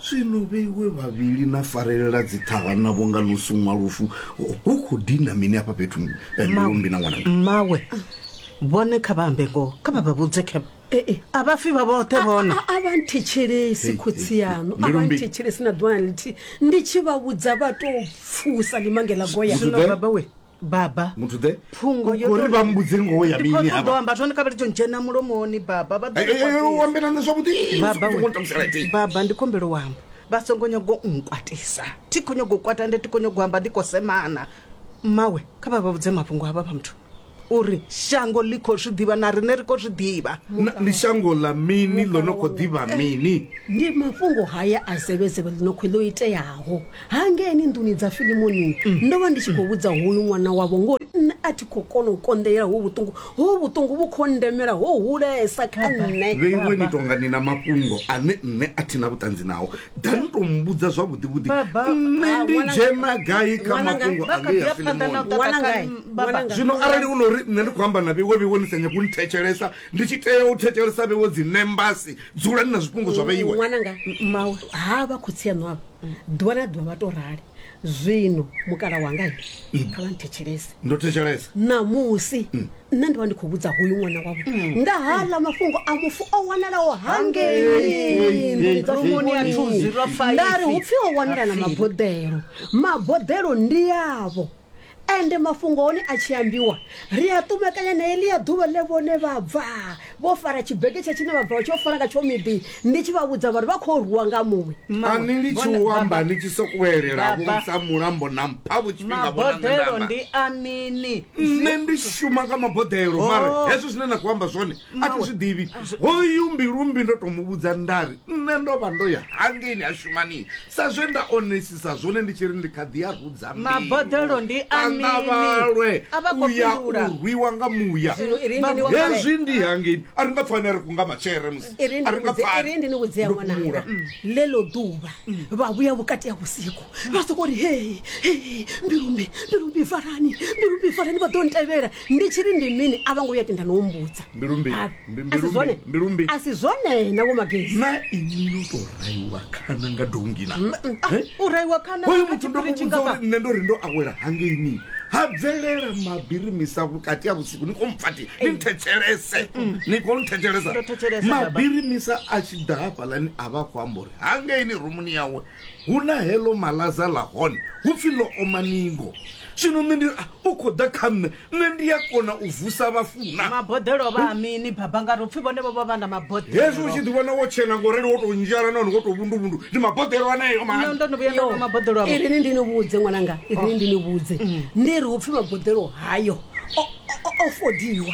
zwino vheiwe vhavhili na farelela dziṱhaha na vhonga no suṅwa lufu hu khou dina mini afha fhethu eh, mbilumbi na ṅwana mmawe vhone kha vha ambe ngoho kha vha vha vhudze khe a vha fi vha vhoṱhe vhona A- a- a vha nthetshelesi Hey, khotsi hey, yaṋu a vha Mbilumbi. nthetshelesi na ḓuvhana lithihi ndi tshi vha vhudza vha tou pfusa limangela goya Zwino Zwiḓe? baba we baba muthu the phungo yo uri vha mbudze ngoho ya mini hapa ndo amba tshone kabeli dzhena mulomoni baba vha ḓo u ambela na zwavhuḓi baba u ṱamusela ti baba ndi kombelo wamba vha songo nyago nkwatisa thi kho nyago kwata ndi thi kho nyago amba ndi kho semana mawe kha vha vha vhudze mafhungo hava vha muthu uri shango ḽi khou zwi ḓivha na riṋe ri khou zwi ḓivha ndi shango ḽa mini ḽo no khou ḓivha mini ndi mafhungo haya a zevhezevhe ḽi no khou ḽo iteaho hangeni nḓuni dza filimoni ndo vha ndi tshi khou vhudza hoyu ṅwana wavho ngori nṋe a thi khou kona u konḓelela ho vhuṱungu ho vhuṱungu vhu khou ndemela ho hulesa kha nṋe vheiwe ni tonga ni na mafhungo ane nṋe a thi na vhuṱanzi nao da ni tou mbudza zwavhuḓivhuḓi Baba. nṋe Ah, ndi ṅwana- dzhena gai kha ṅwana nga- mafhungo vha kha ḓi anea ya phanḓa na u filimoni ṱaṱa Ṅwana kha ngai? nṋe, baba. Ṅwana ngai? zwino arali hu no uri nṋe ndi khou amba na vheiwe vheiwe ni sa nyagi u nthetshelesa ndi tshi tea u thetshelesa vheiwe dzi nembasi dzulani na zwifhungo zwa vheiwe ṅwananga mawe ha vha khotsi aṋu avha ḓuvha na ḓuvha vha to rali zwino mukala wanga he kha vha nthetshelese ndo thetshelesa ṋamusi nṋe ndi vha ndi khou vhudza hoyu ṅwana wavho nga haḽa mafhungo a mufu o wanalaho hangei Rumuni ya thuzi lwa faifi. ndari hu pfi ho wanala na maboḓelo maboḓelo ndi yavho Ende mafhungo a hone a tshi ambiwa, ri a ṱumekanya na heḽia ḓuvha ḽe vhone vha bva vho fara tshibegetsha tshine vha bva vha tshi yo fara ngatsho miḓi, ndi tshi vha vhudza vha ri vha khou rwiwa nga muṅwe. A ni litshi u amba ni tshi sokou elela vho sa mulambo na mpha vho tshifhinga vho na nṋe nda amba. Maboḓelo ndi a mini? Nṋe ndi shuma nga maboḓelo, mara hezwo zwine na khou amba zwone a thi zwi ḓivhi. Hoyu Mbilumbi ndo tou mu vhudza nda ri nṋe ndo vha ndo ya hangeini ha shuma ni. Sa zwe nda onesisa zwone ndi tshi ri ndi kha ḓi a rudza mbeu. Maboḓelo ndi a A nga mini? vhalwe A vha khou u ya fhindula. u rwiwa nga muya. Zwino i ri ndi ni vhudze- Hezwi ndi hangei. A ri nga pfani a ri kunga matshele musi. i ri A ri nga ndi- i pfani. ri ndi ni vhudzea Ndo ṅwananga fhumula. ḽeḽo ḓuvha vha vhuya vhukati ha vhusiku vha soko ri hei hei mbilumbi mbilumbi farani mbilumbi farani vha ḓo ntevhela ndi tshi ri ndi mini a vho ngo vhuya tenda no humbudza Mbilu mbi- Ha, mbi- a mbilu si mbi- zwone mbilu mbi. a si zwone na vho magezi na inwi no to raiwa khana nga dongina u raiwa khana hoyo kha muthu ndo tshiṱiritshi muvhudza ngafha. uri nṋe ndo ri ndo awela hangeini ha bvelela mabirimisa vhukati ha vhusiku ni khou mpfati ni nthetshelese ni khou nthetshelesa Ndo thetshelesa, baba. mabirimisa a tshi ḓa hafhalani a vha khou amba uri hangeini rumuni yawe Hu na heḽo malaza ḽa hone, hu pfi ḽo oma ningo. Zwino nṋe ndi ri, A, u khou ḓa kha nṋe, nṋe ndi a kona u vusa vhafu na? Maboḓelo o vha a mini, Baba? Nga ri u pfi vhone vho vha vha na maboḓelo. Hezwi u tshi ḓivhona wo tshena nga u rali, wo tou nzhala nahone wo tou vhunduvhundu, ndi maboḓelo aneo mani. Nṋe ndo no vhuya nda nwa maboḓelo avho. Irini ndi ni vhudze, ṅwananga, irini ndi ni vhudze, ndi ri hu pfi maboḓelo hayo o, o, o fodiwa.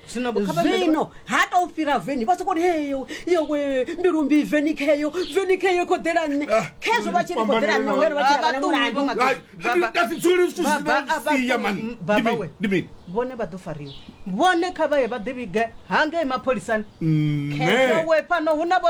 Zwino vho kha vha mele- zwino ha tou fhira veni vha sokou ri heyo yowe mbilu mbi veni kheyo veni kheyo khoḓela nṋe khezwo vha tshi ri khoḓela nṋe ngori vha tshi ri vha na mulandu vhone vha ḓo fariwa vhone kha vhaye vha ḓivhige hangei mapholisani khezwo we fhano hu na vho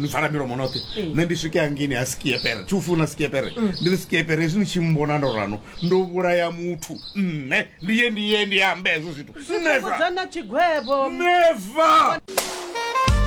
ni vala milomo noṱhe mm. nṋe ndi swike hangini ha skiepere thi u funa skiepere mm. ndi ri skiepere hezwi ni tshi mbona ndo rano ndo vhulaya muthu nṋe ndi ye ndi ye ndi ambe hezwo zwithu neva neva